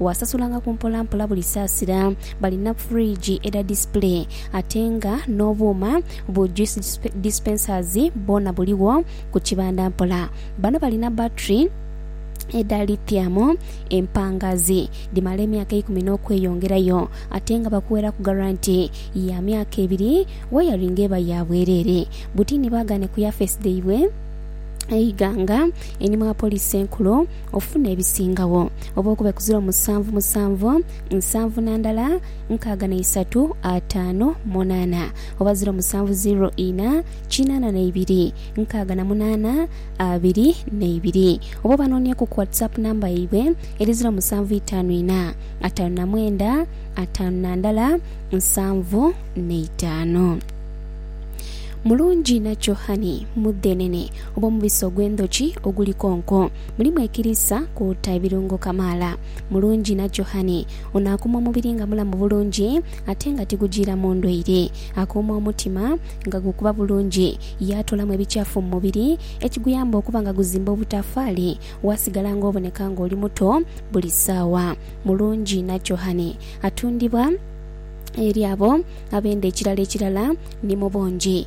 Waasasulangako mpolampola buli saasira. Balina fridge edha display ate nga n'obuuma bu juice dispensers bwona buligho ku kibanda mpola. Bano balina battery edha lithium empangaazi dhimala emyaka eikumi n'okweyongerayo ate nga bakuweraku garanti ya myaka ebiri. Wayaringi eba ya bwereere. Butini baagaane ku yafeesi dhaibwe e Iganga eni mwa Poliisi Enkulu. Ofune ebisingagho oba okube ku ziro musanvu musanvu, nsanvu na ndala, nkaaga na isatu, ataano, munaana, oba ziro musanvu ziro ina, kinaana na ibiri, nkaaga na munaana, abiri na ibiri. Oba obanonieku ku WhatsApp namba yaibwe eri ziro musanvu itaanu ina, ataanu na mwenda, ataanu na ndala, nsanvu na itaanu. Mulungi inakyo honey, mudhenene. oba omubisi ogw'endhoki oguli konko. Mulimu ekiriisa kwoota ebirungo kamaala. Mulungi nakyo hani. Ono akuuma omubiri nga mulamu bulungi ate nga tigujiiramu ndwaire. Akuuma omutima nga gukuba bulungi, yaatoolamu ebikyafu mu mubiri ekiguyamba okuba nga guzimba obutaafaali waasigala nga oboneka nga oli muto buli saawa. Mulungi nakyo hani. Atundibwa eri abo abenda ekirala ekirala ni mu bungi.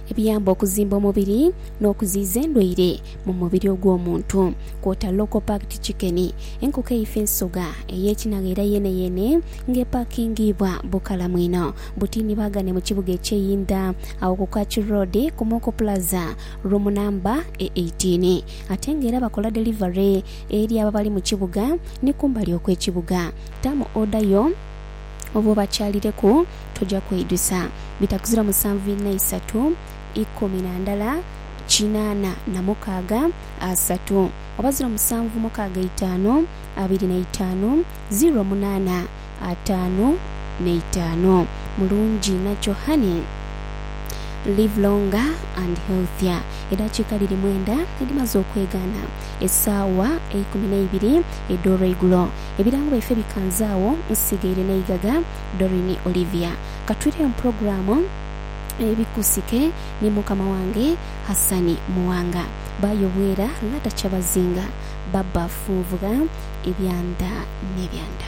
ebiyamba okuzimba omubiri n'okuziiza endwaire mu mubiri ogw'omuntu, kwota local-packed chicken, enkoko eifa ensoga ey'ekinagha era yeeneyeene nga epakingiibwa bukalamu inho. Butini baagane mu kibuga eky'e Yinda agho ku Kachu Road ku Moko Plaza, room namba e eighteen ate nga era bakola delivery eri abo abali mu kibuga ni kumbali okw'ekibuga. Tamu oda yo. Obwo bakyalireku toja kweijusa. Bitakuzira musanvu inha isatu ikumi na ndala kinaana na mukaaga asatu oba ziro musanvu mukaaga eitaanu abiri na itaanu ziro munaana ataanu n'eitaanu. Mulungi inha kyo honey. Live longer and healthier. Edhakiika dhiri mwenda edhimaze okwegaana esaawa eikumi n'eibiri edh'olweigulo. Ebirango byaife bikanze agho. Nsigaire n'eighagha. Doreen Olivia. Ka twireyo mu pulogulaamu Ebikusike ni mukama wange Hassan Muwanga. Bba Yobwera Lata Kyabazinga. Bba Funvugha Ebyanda n'ebyanda.